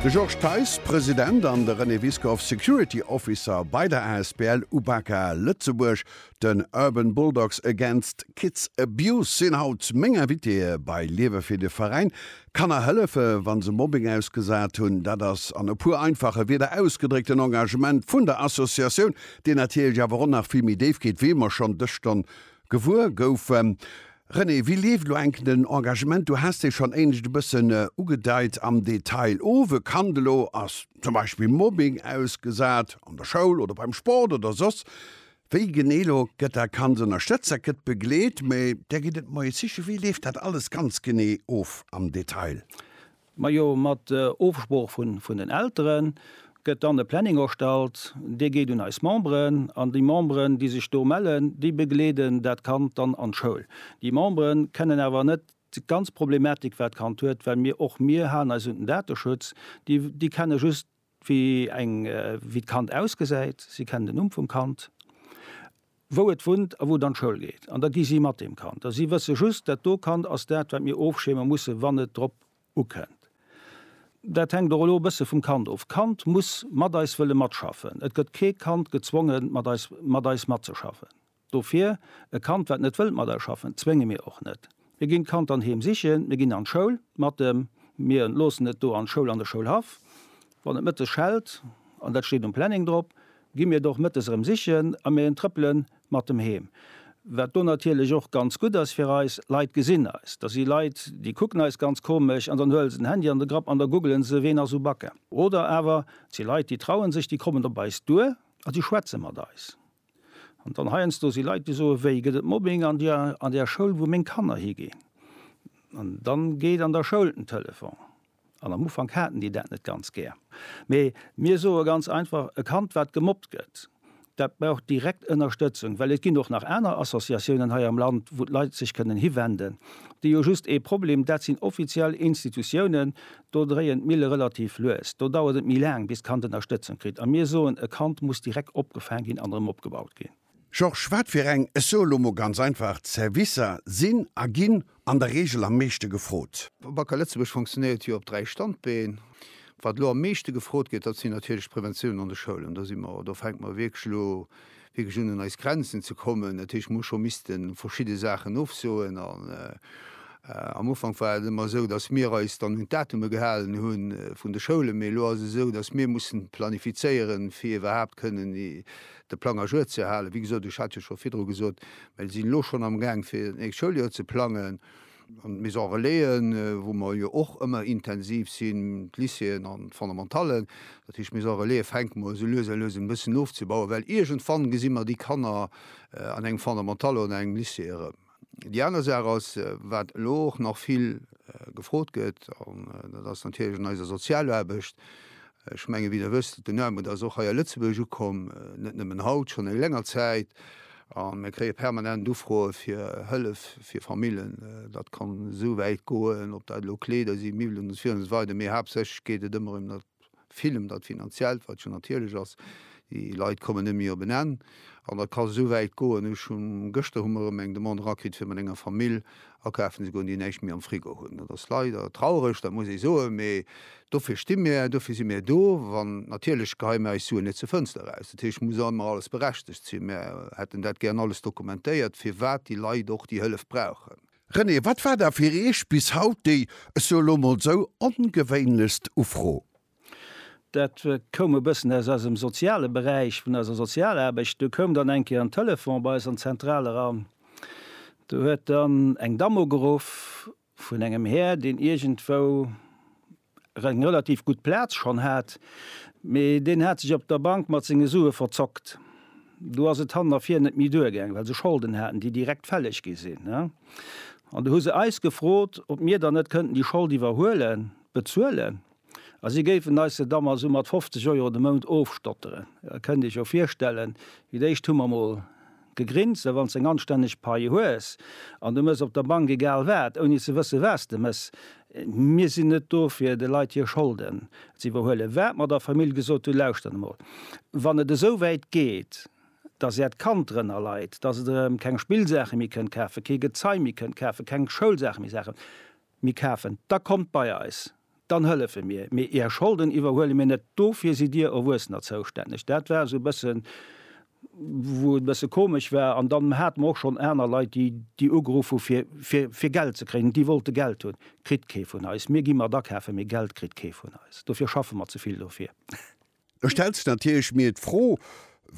De Georges Theis, President, an de René Wiskow, Security Officer bei der asbl Ubaka Lëtzebuerg, den Urban Bulldogs Against Kids Abuse, sinn haut meng Invitéeë bei Liewe fir de Veräin. Kanner hëllefe wa se Mobbing ausgesat hunn, dat ass an e puer einfache Wierder ausgedréckt den Engagement vun der Associatioun, deen natierlech awer och nach vill méi déif geet, wéi mer schonn dës Stonn Gewuer goufen. René, wéi leeft elo enk den Engagement? Du has dee schonn éinescht e bëssen ugedeit am Detail of. E Kand elo ass zum Beispill Mobbing ausgesat, an der Schoul oder beim Sport oder soss wéi. Genee elo gëtt dat Kand ënnerstëtzt, dat gëtt begleet, mee Där gitt et Moies sichen. Wéi leeft dat alles ganz genee of am Detail? Majo, mat Ofsprooch vun den Elteren gëtt dann e Planning erstallt, dee geet un eis Memberen an déi Memberen, déi sech do mellen, déi begleeden dat Kand dann an d'Schoul. Déi Memberen kennen awer net déi ganz Problematik wat d'Kand huet, well mir och mir halen eis un den Dateschutz, déi kennen just Wéi eng, wéi d'Kand ausgesäit, si kennen den Numm vum Kand, wou et wunnt a wou et an d'Schoul geet. An da gi si mat deem Kand. A si wësse just, dat do Kand ass dat, wat mir ofschierme musse wann et drop ukënnt. Dat hänkt och elo e bësse vum Kand of. D'Kand muss mat eis wëlle matschaffen. Et gëtt kee Kand gezwonge mat eis, mat eis matzeschaffen. Dofir, e Kand wat net wëllt mat eis schaffen, zwénge mir och net. Mir ginn d'Kand dann heem sichen, mir ginn an d'Schoul mat em, mir loossen et do an d'Schoul, an de Schoulhaff. Wann et mëttes schellt, an dat steet um Planning drop, gi mir et och mëttes erëm sichen a mir trëppele mat em heem. Wat do natierlech och ganz gutt ass fir eis, Leit gesinn eis. Da si Leit, déi kucken eis ganz komesch an dann huele se den Handy an de Grapp an da googelen se, ween ass u Bacca. Oder awer et si Leit, déi trauen sech, déi kommen op eis duer a déi schwätze mat eis. An dann heiansdo si Leit, déi soe wéi gëtt et Mobbing an der an där Schoul, wou meng Kanner higinn? An da geet an der Schoul den Telefon. An am Ufank haten déi dat net ganz gär. Mee mir soe ganz einfach, e Kand, wat gemobbt gëtt, dat brauch direkt Ënnerstëtzung. Well et ginn och nach aner Associatiounen hei am Land, wou d'Leit sech kënnen hiwenden, déi hu just ee Problem, dat sinn offiziell Institutiounen, Do dréien d'Mille relativ lues, do dauert et méi laang, bis d'Kand Ënnerstëtzung kritt. A mir soen, e Kand muss direkt opgefaang ginn an erëm opgebaut ginn. Georges, Wat fir eng, ech soe lo mol ganz einfach, Servicer sinn a ginn an der Reegel am meeschte gefrot? Bacca Lëtzebuerg fonctionéiert jo op dräi Standbeen. Wat elo am meeschte gefrot gëtt, dat sinn natierlech d'Preventioun an de Schoulen. Do si mer, do fänke mer wierklech elo. wierklech un eis Grenzen ze kommen, dat heescht mir hu scho misste verschidde Saachen ofsoen an am Ufank war et ëmmer esou, datt mir eis dann un d'Datume gehalen hu vun de Schoulen, mee elo ass et esou, datt mir mussen planifizéiere fir iwwerhaapt kënnen de Plang à jour ze halen. Wéi gesot, ech hat jo scho virdru gesot, mir sinn elo schonn amgaang fir d'nächst Schouljoer ze plangen. an d'Maison Relaisen, wou mer jo och ëmmer intensiv sinn, d'Lycéeën an d'Fondamentallen. Dat heescht, d'Maison Relaisen fänke mer esou lues a lues un e bëssen ofzebauen, well iergendwann gesi mer déi Kanner an engem Fondamental oder an engem Lycée erëm. Déi aner Saach ass, wat elo och nach vill gefrot gëtt, an dat ass natierlech an eiser Sozialaarbecht, Ech mengen, wéi Der wësst, den Armut ass och hei a Lëtzebuerg ukomm, net nëmmen haut, schonn eng länger Zäit. A mir kréie permanent Ufroe fir Hëllef fir Famillen. Dat kann esou wäit goen, ob dat elo Kleeder sinn, Miwwelen usw. Mee haaptsächlech geet et ëmmer ëm dat, vill ëm dat Finanziellt, wat jo natierlech ass. Déi Leit kommen net méi op en Enn. An dat ka esou wäit goen, ech hu gëschter hu mer erëm eng Demande erakritt, fir mat enger Famill Akafen esouguer un déi näischt méi am Frigo hunn. Dat ass leider traureg, dat muss ee soen, mee dofir sti mir, dofir si mir do. An natierlech geheie mir eis Suen net zur Fënster eraus. Dat heescht, et muss ëmmer alles berechtegt sinn. Mir hätten dat gären alles dokumentéiert, firwat déi Leit och déi Hëllef brauchen. René, wat war da fir Iech bis haut déi, ech soe lo mol esou, ongewéinlechst Ufro? Dat koum e bëssen aus eisem soziale Beräich, vun eiser Sozialaarbecht. Do koum dann eng Kéier en Telefon bei eis an d'Zentral eran. Do huet dann eng Damm ugeruff vun engem Här, deen iergendwou eng relativ gutt Plaz schonn hat, mee deen hat sech op der Bank mat senge Sue verzockt. Do ass et han a vir net méi duergaangen, well se Scholden haten, déi direkt fälleg gi sinn. An do hu se eis gefrot, ob mir dann net kënnten déi Schold iwwerhuelen, bezuelen. A si géifen eis se da mol esou mat 50 Euro de Mount ofstotteren. Da kënnt Dir Iech jo virstellen, fir d'éischt hu mer mol gegrinst, well wann s de eng anstänneg Pai hues an de mëss op der Bank egal wat, ouni ze wësse wat s de mëss, mir sinn net do fir de Leit hir Scholden ze iwwerhuelen, wat mer der Famill gesot hunn, lauschtert emol, wann et esou wäit geet, dass Äert Kand drënner leit, dass et erëm keng Spillsaache méi kënnt kafen, kee Gezei méi kënnt kafen, keng Schoulsaache méi saachen, Mir kafen, da kommt bei eis, dann hëllefe mir, mee Är Scholden iwwerhuele mir net, dofir sidd Dir Erwuessener zoustänneg. Dat war esou e bëssen, wou et e bësse komesch war. An dann hate mer och schonn aner Leit, déi, déi ugeruff hu fir Geld ze kréien, déi wollte Geld hunn. Kritt kee vun eis. Mir gi mat akafe, mee Geld kritt kee vun eis. Dofir schaffe mer ze vill dofir. Ech stellen sech natierlech mir d'Fro,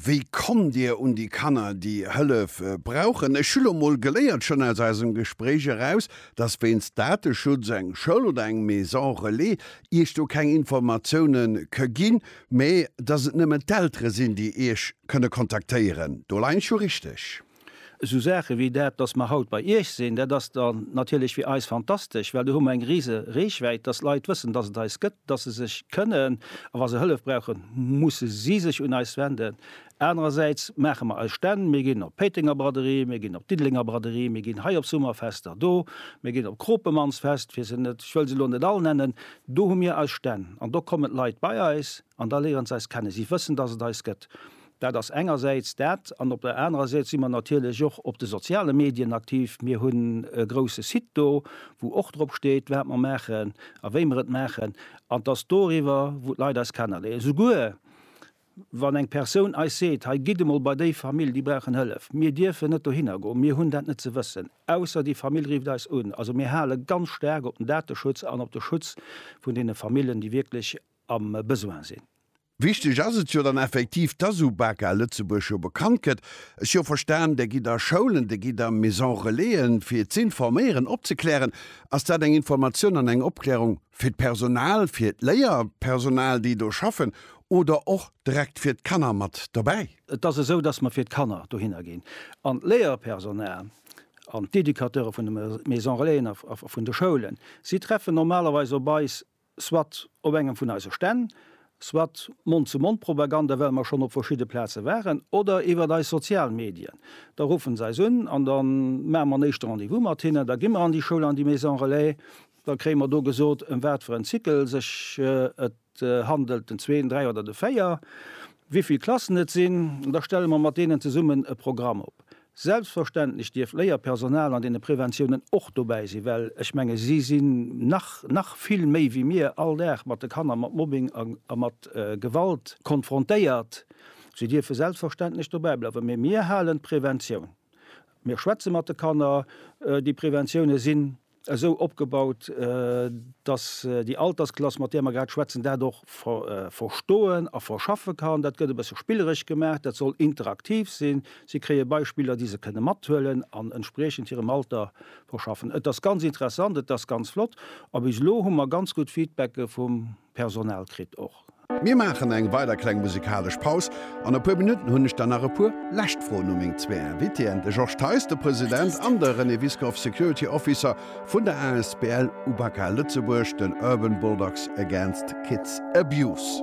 Wéi kommt Dir un déi Kanner, déi Hëllef brauchen? Ech hu lo mol geléiert, schonn aus eisem Gespréich eraus, dass wéinst Dateschutz eng Schoul oder eng Maison Relais Iech do keng Informatioune ke ginn, mä dass et nëmmen d'Eltere sinn, déi Iech kënne kontaktéieren. Do leien ech jo richteg? Esou Saache wéi dat, dass mer haut bei Iech sinn, dat ass da natierlech fir eis fantastesch, well do hu mer eng rise Reechwäit, dass Leit wëssen, dass et eis gëtt, dass se sech kënnen, a wa se Hëllef brauchen, musse si sech un eis wenden. Anerersäits maache mer eis Stänn, mir ginn op d'Péitenger Braderie, mir ginn op d'Diddelenger Braderie, mir ginn hei op Summerfester do, mir ginn op d'Kropemannsfest, fir se net, ech wëll se elo net all nennen, do hu mir eis Stänn an do kommen d'Leit bei eis an da léiere se eis kennen. Si wëssen, dass et eis gëtt. Dat ass engersäits dat. An op der anerer Säit si mer natierlech och op de soziale Medien aktiv. Mir hunn e grouse Site do, wou och drop steet, wat mer maachen a wéi mer et maachen. An 't ass doriwwer, wou d'Leit eis kennerléieren. Souguer wann eng Persoun eis seet, hei gitt emol bei déi Famill, déi brauchen Hëllef. Mir dierfen net dohinner goen. Mir hunn dat net ze wëssen, ausser déi Famill rifft eis un. Also mir hale ganz staark op den Dateschutz an op de Schutz vun deene Famillen, déi wierklech am Besoin sinn. Wichteg ass et jo dann effektiv, dass UBAKA Lëtzebuerg jo bekannt gëtt. Ech jo verstan, Der gitt a Schoulen, Der gitt a Maison-relaisen, fir z'informéieren, opzeklären. Ass dat eng Informatioun an eng Opklärung fir d'Personal, fir d'Léierpersonal, déi do schaffen, oder och direkt fir d'Kanner mat dobäi? Et ass esou, dass mer fir d'Kanner dohinner ginn an d'Léierpersonal an d'Educateure vun de Maison-relaisen a vun de Schoulen, si treffen normalerweis op eis soit op engem vun eise Stänn, soit Mond-zu-Mond-Propaganda, well mer schonn op verschidde Plaze waren, oder iwwert eis sozial Medien. Da ruffen se eis un an da maache mer en éischte Rendez-vous mat hinnen. Da gi mer an déi Schoul, an déi Maison Relais. Da kréie mer do gesot, ëm wat fir en Cycle sech et handelt, den zwee, den dräi oder de véier, wéi vill Klassen et sinn. Da stelle mer mat deenen zesummen e Programm op. Selbstverständlech dierf d'Léierpersonal an deene Preventiounen och dobäi sinn, well ech menge si sinn nach, nach vill méi wéi mir, all Dag mat de Kanner mat Mobbing a mat Gewalt konfrontéiert. Si dierfe selbstverständlech dobäi bleiwen. Mee mir halen d'Preventioun, mir schwätze mat de Kanner, déi Preventiounen sinn esou opgebaut, dass déi Altersklass, mat där mer grad schwätzen, dat och verstoen a verschaffe kann. Dat gëtt e bësse spilleresch gemaach, dat soll interaktiv sinn. Si kréie Beispiller, déi se kënne mathuelen an entspriechend hirem Alter verschaffen. Et ass ganz interessant, et ass ganz flott a bis elo hu mer ganz gutt Feedbacke vum Personal kritt och. Mir maachen eng weider kleng musikalesch Paus. An e puer Minutten hunn ech dann nach e puer lescht Froen u meng zwee Invitéen, de Georges Theis, de President, an de René Wiskow, Security Officer vun der asbl UBAKA Lëtzebuerg, den Urban Bulldogs Against Kids Abuse.